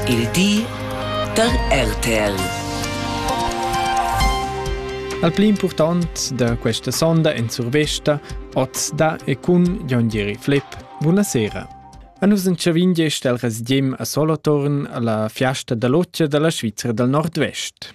Il di da RTL. Al pli impurtant da questa sonda en survesta, oz da e cun Jon Gieri Flipp. Buonasera. A nus entschavin gest el resdiem a Solothurn alla fiasta da lotgia dalla Svizra dal Nordvest.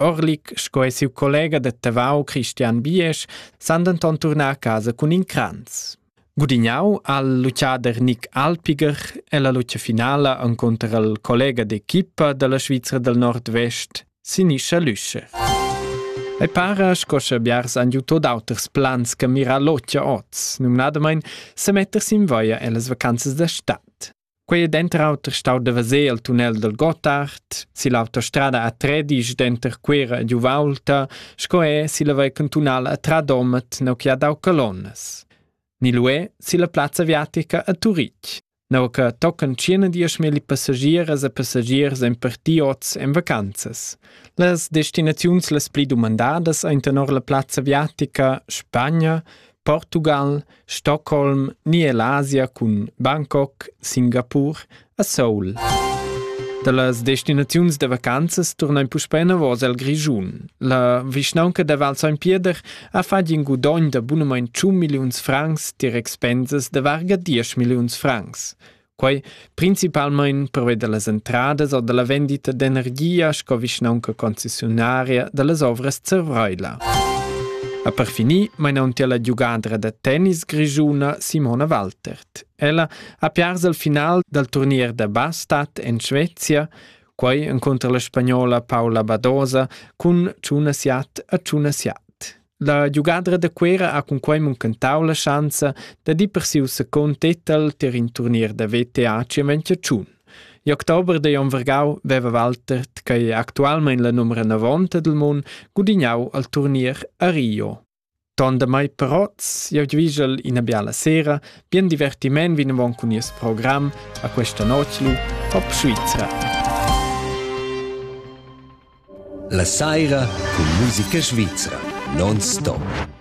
Orlik sco e siu collega da Tavau Christian Biesch san denton turnar a casa cun in cranz. Gudignau ha luciader Nick Alpiger ella lucia finala encunter il collega d'equipa dalla Svizra del Nord-Vest, Sinischa Lüscher. E para sco sche biars han jutto d'auters plans che mira locia oz, numnadamain se metter sin voia ellas vacanzas da stat. Quei è denter auter stau da veser il tunnel dal Gottard, si l'autostrada a Tredisch denter Cuera ed Uvaulta, sco è si la vei cantunala a Tradomet neu che ha dau colonnas. Ni lu è si la plazza aviatica a Turitg, neu che tocan tschient dieschmilli passagiers e passagiers en partiots en vacanzas. Las destinaziuns las pli dumandadas ein tenor la plazza aviatica Spagna, Portugal, Stockholm ni l'Asia cun Bangkok, Singapur a Seoul. Da las destinaziuns da vacanzas turnain puspè enavos al Grischun. La vischnaunca da Val San Pieder ha fatg in gudogn da bunamain 100 milliuns francs dir expensas da varga 10 milliuns francs. Quai principalmain preveda las entradas o da la vendita d'energia sco vischnaunca concessionaria da las ovras Zervraila. A per finir mainauntia la giugadra da tennis grischuna Simona Waltert. Ella ha piars al final dal turnier da bastat en Svezia, quai encunter la spagnola Paula Badosa cun Tuna Siat a Tuna Siat. La giugadra da Cuera ha cunquei muncentau la schanza da dir per siu secund titel tier in turnier da VTA Chiaventia-Tschun. Igl october da Jon Vergau veva Walter, tgei actualmein la numera navonta dil mun, gudignau al turnier a Rio. Ton da mai Perotz, io gvigel ina biala sera, bien divertiment vinavon cun nies program a questa noclu, Hop Svizzera! La saira cun musica svizra non stop.